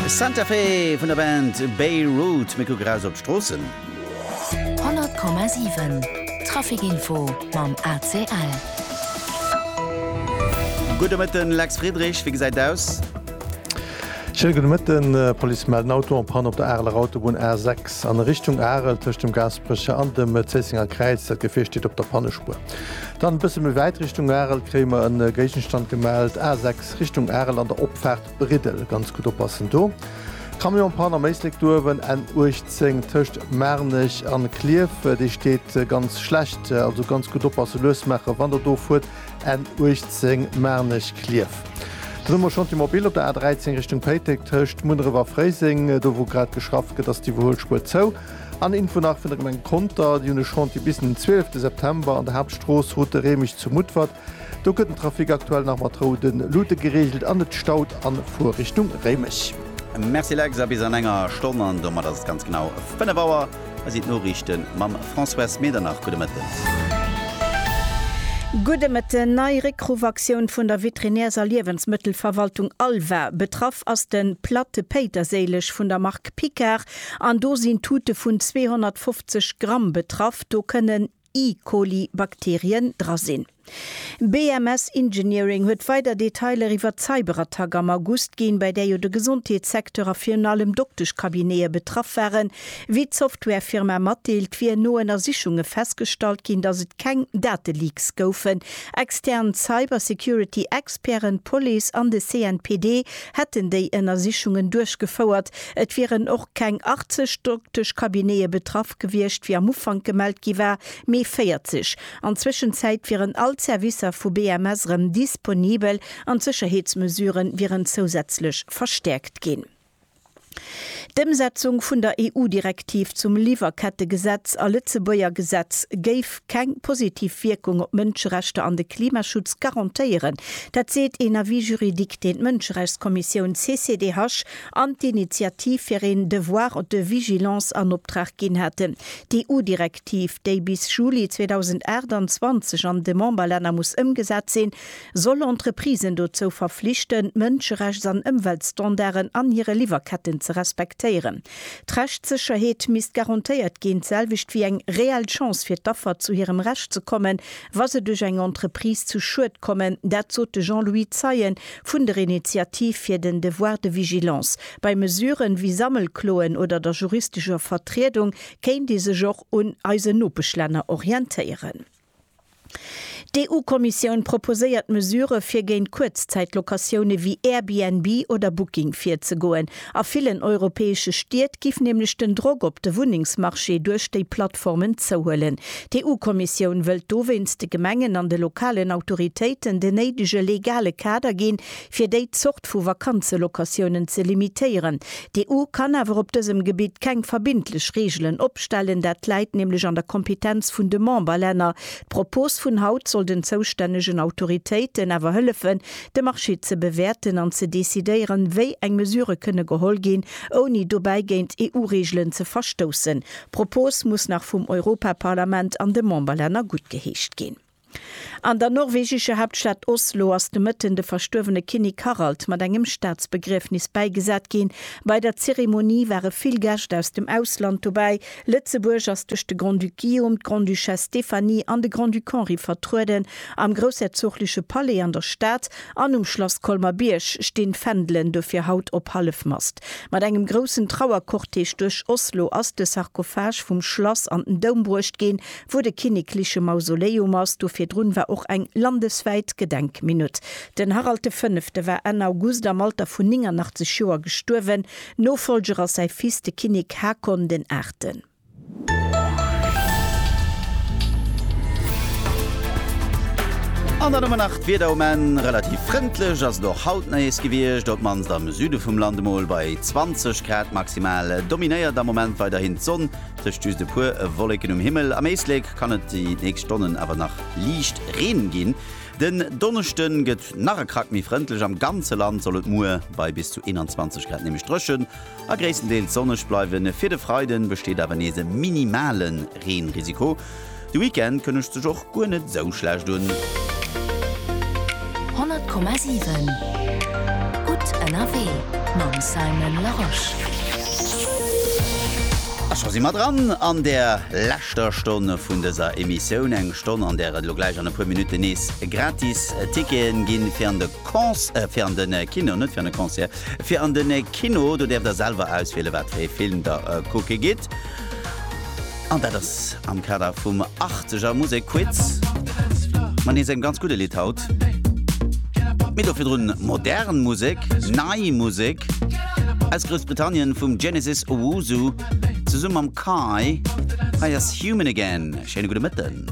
Santa Fe vun der Band Beirut. Mir kucken raus op d'Stroossen. 100,7 Traficinfo mam ACL. Gudde Mëtten, Lex Friedrich, wéi gesäit et aus? Schéine gudde Mëtten, D'Police mellt en Auto en Panne op der Areler Autobunn A6 an Richtung Arel tëscht dem Gaasperecher an dem Zéissenger Kräiz. Dat Gefier steet op der Pannespuer. Dann e bësse méi wäit Richtung Arel kréie mer e Géigenstand gemellt, A6. Richtung Arel an der Opfaart Briddel ganz gutt oppassen do. Camionspanne am Éislek duerwen N 18 tëscht Maarnech an Klierf, déi steet ganz schlecht, also ganz gutt oppassen, lues maachen wann der do fuert N 18 Maarnech, Klierf. Dann hu mer Chantier Mobile op der A 13 Richtung Péiteng tëscht Munneref a Fréiseng, do wou grad geschafft gëtt ass d'Iwwerhuelspuer zou. An Info nach vun der Gemeng Conter, déi hunn e Chantier bis den 12 September an der Haaptstrooss route Reemech zu Mutfert, Do gëtt den Trafic aktuell nach mat roude Lute gereegelt an et staut a Fuer Richtung Réimech. Merci Lex, a bis an enger Stonn, an domat ass et ganz genau 5 Auer, hei sinn d'Noriichte mam Françoise Medernach. Gudde Mëtten. Gudde Mëtten. Nei Réckruffaktioun vun der Veterinärs a Liewensmëttelverwaltung ALVA. Betraff ass de Platte Péiterséileg vun der Mark Picard an do sinn Tute vun 250 Gramm betraff. Do kënnen. E. coli Bakterien dra sinn. BMS Engineering huet weider Detailer iwwert d'Cyberattack am August ginn, bei där jo de Gesondheetssecteur a virun allem Dokteschcabinete betraff waren. Wéi d'Softwarefirma matdeelt, wier no Ënnersichunge festgestallt ginn, datt et keng Dateleaks goufen. Extern Cybersecurity-Experten, d'Police an de CNPD hätten déi Ënnersichungen duerchgefouert, Et wieren och keng 80 Dokteschcabinete betraff gewiescht, wéi am Ufank gemellt gi war, mee 40. An d'Zwëschenzäit wieren all d'Servicer vu BMS erëm disponibel an d'Sécherheetsmesure wieren zousätzlech verstäerkt ginn. D'Ëmsetzung vun der EU-Direktiv zum Liwwerkettegesetz a Lëtzebuerger Gesetz géif keng positiv Wierkung op d'Mënscherechter an de Klimaschutz garantéieren. Dat seet een Avis juridique, deen d'Mënscherechtskommissioun CCDH an d'Initiativ fir een Devoir de vigilance an Optrag ginn haten. D'EU-Direktiv, déi bis Juli 2028 an de Memberlänner muss ëmgesat sinn, soll Entreprisen dozou verflichten, Mënscherechts an Ëmweltstandarden an hire Liwwerketten ze respektéieren. D'Rechtssécherheet misst garantéiert ginn, d'selwecht wéi eng reell Chance fir d'Affer zu hirem Recht ze kommen, wa se duerch eng Entreprise zu Schued kommen. Dat sot de Jean-Louis Zeien vun der Initiativ fir den Devoir de vigilance. Bei Mesuren, wéi Sammelkloen oder der juristescher Vertriedung, kéint ee sech och un eisen Nopeschlänner orientéieren. D'EU-Kommissioun proposéiert Mesurë fir géint Kuerzzäitlocatioune wéi Airbnb oder Booking virzegoen. A villen europäesche Stied giff nämlech den Drock op de Wunnengsmarché duerch déi Plattformen zouhuelen. D'EU-Kommissioun wëllt dowéinst de Gemengen an de lokalen Autoritéiten den néidege legale Kader ginn, fir déi Zort vu Vakanzelocatiounen ze limitéieren. D'EU kann awer op dësem Gebitt keng verbindlech Reegelen opstellen, dat läit nämlech an der Kompetenz vun de Memberlänner. D'Propos vun haut soll den zoustännegen Autoritéiten awer hëllefen, de Marché ze bewäerten an ze decidéieren, wéi eng Mesurë kënne geholl ginn, ouni dobäi géint EU-Reegelen ze verstoussen. D'Propos muss nach vum Europaparlament an de Memberlänner guttgeheescht ginn. An der norwegescher Haaptstad Oslo ass de Mëtten de verstuerwene Kinnek Harald mat engem Staatsbegriefnis bäigesat ginn. Bei der Zeremonie ware vill Gäscht aus dem Ausland dobäi, Lëtzebuerg ass duerch de Grand-Duc Guillaume, d'Grande-Duchesse Stéphanie an de Grand-Duc Henri vertrueden. Am groussherzogleche Palais an der Stad an um Schlass Colmer-Bierg stinn d'Fändelen dofir haut op Hallefmast. Mat engem groussen Trauercortège duerch Oslo ass de Sarkophage vum Schlass an den Doum bruecht ginn, wou de kinnekleche Mausoleum ass. Do virdrun war och eng landeswäit Gedenkminutt. Den Harald de Fënnefte war Enn August am Alter vun 89 Joer gestuerwen. Nofollger ass säi Fils, de Kinnek Haakon den Aachten. An dann hu mer nach d'Wieder um Enn. Relativ frëndlech ass et och haut nees gewiescht, op mannst am Süde vum Land. Emol bei 20 Grad maximal dominéiert am Moment weiderhin d'Sonn, tëscht just e puer Wolleken um Himmel. Am Éislek kann et déi nächst Stonnen awer nach liicht Reen ginn. Den Donneschde gëtt nach e Krack méi frëndlech, am ganze Land soll et muer bei bis zu 21 Grad nämlech dréchen a gréisstendeels sonneg bleiwen. Fir de Freiden besteet awer nees e minimale Reenrisiko. De Weekend kënnegt sech och guer net esou schlecht un. 100,7 gutt ënnerwee mam Simon Larosche. A scho si mer dran an der. ster Stonn vun dëser Emissioun, eng Stonn an där et elo gläich an e puer Minutten nees gratis Ticketen ginn fir an de Cons, äh, fir an den Kino, net fir an de Concert, fir an den Kino. Do däerft der selwer auswielen wat fir ee Film der kucke gitt an dat ass am Kader vum 80 er Musek Quiz mat nees engem ganz gudde Lidd haut, mee do virdrun modern Musek, nei Musek aus Groussbritannien vum Genesis Owusu. Zesumme mam Kai. Hei ass Human Again. Schéine gudde Mëtten.